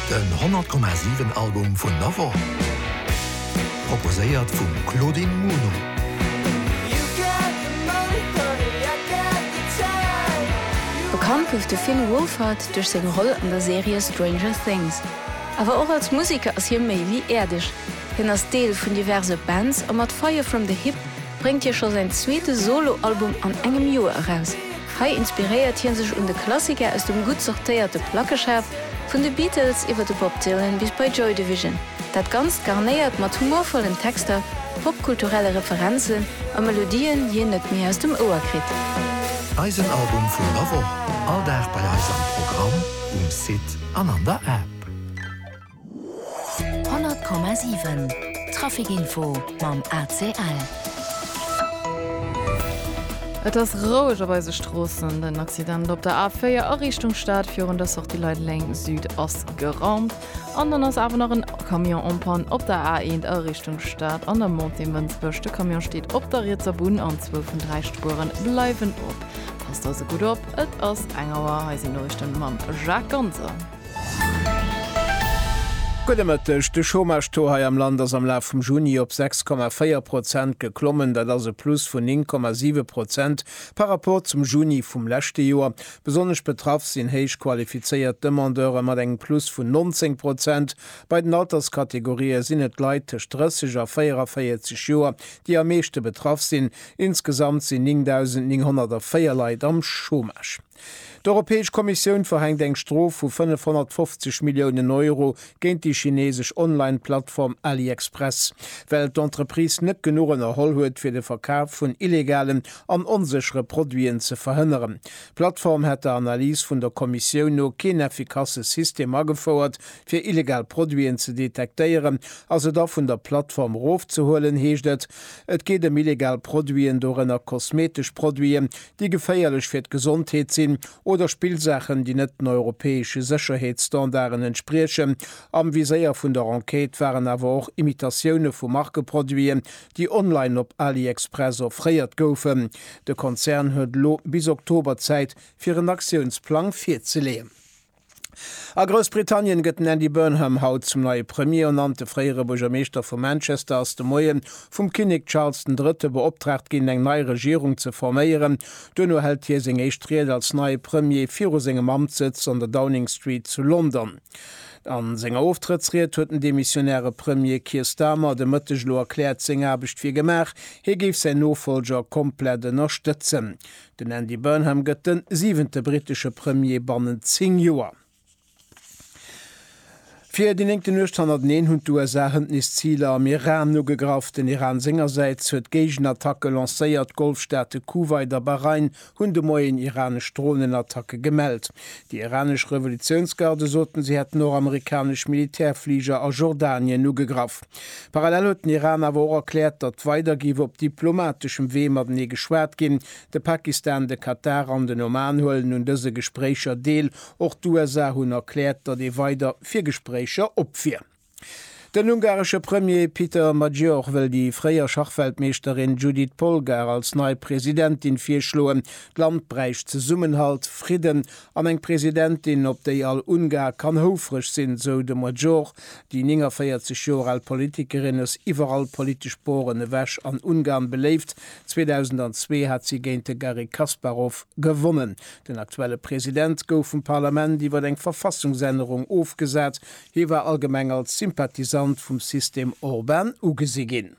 Den 100,7 Album vun der Woch, proposéiert vum Claudine Muno. Bekannt gouf de Finn Wolfhard duerch seng Roll an der Serie Stranger Things. Awer och als Museker ass hie méi wéi äerdeg. Hien ass Deel vun diverse Bands a mat Fire From The Hip bréngt hie scho säin zweete Solo-Album an engem Joer eraus. Hei inspiréiert hie sech un de Klassiker aus dem gutt sortéierte Plackeschaf, vun de Beatles iwwer de Bob Dylan bis bei Joy Division. Dat Ganzt garnéiert mat humorvollen Texter, popkulturelle Referenzen a Melodien, déi een net méi aus dem Ouer kritt. Eisen Album vun der Woch, all Dag bei eis am Programm, um Site an an der App. 100,7 Traficinfo mam ACL. Et ass roueg op eise Stroossen. Den Accident op der A4 a Richtung Stad virun der Sortie Leideleng Süd ass geraumt. An dann ass awer nach en Camion en panne op der A1 a Richtung Stad an der Montée Mënsbech. De Camion steet op der rietser Bunn an zwou vun dräi Spueren bleiwen op. Passt also gutt op, et ass eng Auer. Hei sinn d'Noriichten mam Jacques Ganser. Gudde Mëtteg. De Chômage-Taux hei am Land ass am Laf vum Juni op 6,4 Prozent geklommen. Dat ass e Plus vun 9,7 Prozent par rapport zum Juni vum leschte Joer. Besonnesch betraff sinn héich qualifizéiert Demandeure mat engem Plus vun 19 Prozent. Bei den Alterskategorië sinn et Leit tëscht 30 a 44 Joer, déi am meeschte betraff sinn. Insgesamt sinn 9.904 Leit am Chômage. D'Europäesch Kommissioun verhänkt eng Strof vu 550 Milliounen Euro géint déi chinesesch Online-Plattform AliExpress, well d'Entreprise net genuch ënnerholl huet, fir de Verkaf vun illegalen an onséchere Produiten ze verhënneren. D'Plattform hätt der Analys vun der Kommissioun no keen effikasse System agefouert, fir illegal Produiten ze detektéieren a se da vun der Plattform erofzehuelen, heescht et. Et geet ëm illegal Produiten, dorënner kosmetesch Produiten, déi geféierlech fir d'Gesondheet sinn, oder Spillsaachen, déi net den europäesche Sécherheetsstandarden entspriechen. Am Viséier vun der Enquête waren awer och Imitatioune vu Markeproduiten, déi online op AliExpress offréiert goufen. De Konzern huet elo bis Oktober Zäit, fir en Aktiounsplang virzeleeën. A Groussbritannien gëtt den Andy Burnham haut zum neie Premier ernannt. De fréiere Buergermeeschter vu Manchester ass de Moie vum Kinnek Charles den Drëtte beoptraagt ginn, eng nei Regierung ze forméieren. Duerno hält hie seng éischt Ried als neie Premier viru sengem Amtssëtz an der Downing Street zu London. A senger Oftrëttsried huet den demissionäre Premier Keir Starmer de Mëtteg elo erkläert, seng Aarbecht wier gemaach, hie géif säin Nofolger komplett ënnerstëtzen. Den Andy Burnham gëtt de siwente brittesche Premier bannent 10 Joer. Fir déi néngte Nuecht hannerteneen hunn d'USA hënt nees Ziler am Iran ugegraff. Den Iran sengersäits huet Géigenattacke lancéiert. D'Golfstaate Kuwait a Bahrain hunn de Moien iranesch Dronenattacke gemellt. Déi iranesch Revolutiounsgarde soten, si hätten och amerikanesch Militärfliger a Jordanien ugegraff. Parallel huet den Iran awer och erkläert, datt weider géif op diplomateschem Wee matenee geschwat ginn. De Pakistan, de Katar an den Oman huelen un dëse Gespréicher deel. Och d'USA hunn erkläert, datt ee weider fir Gespréicher op wier. Den ungaresche Premier Peter Magyar wëll déi fréier Schachweltmeeschterin Judit Polgár als nei Presidentin virschloen. D'Land bräicht Zesummenhalt, Fridden An eng Presidentin, op déi all Ungar kann houfreg sinn, sou de Major. Déi 49 Joer al Politikerin ass iwwer all politesch Boren ewech an Ungarn beléift. 2002 hat si géint de Garry Kasparov gewonnen. Den aktuelle President gouf vum Parlament iwwer eng Verfassungsännerung ofgesat. Hie war allgemeng als Sympathisant vum System Orban ugesi ginn.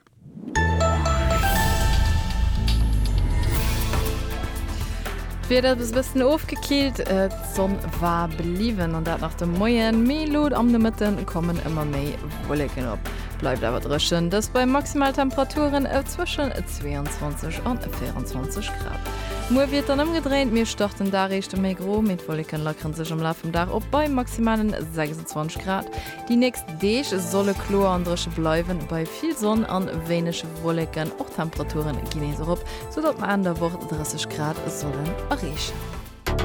D'Wieder ass e bëssen ofgekillt, d'Sonn war bliwwen an dat nach de Moien, mee elo am Nomëtte kommen ëmmer méi Wolleken op. Et bleift awer dréchen, dëst bei Maximaltemperaturen zwëschen 22 an 24 Grad. Muer wier et dann ëmgedréint, mir starten den Dag éischter méi gro, mee d'Wolleken lackere sech am Laf vum Dag op bei maximalen 26 Grad. Déi nächst Deeg solle kloer an dréche bleiwen, bei vill Sonn an wéineg Wolleken. Och d'Temperaturen ginn nees erop, soudatt mer Enn der Woch 30 Grad sollen erreechen.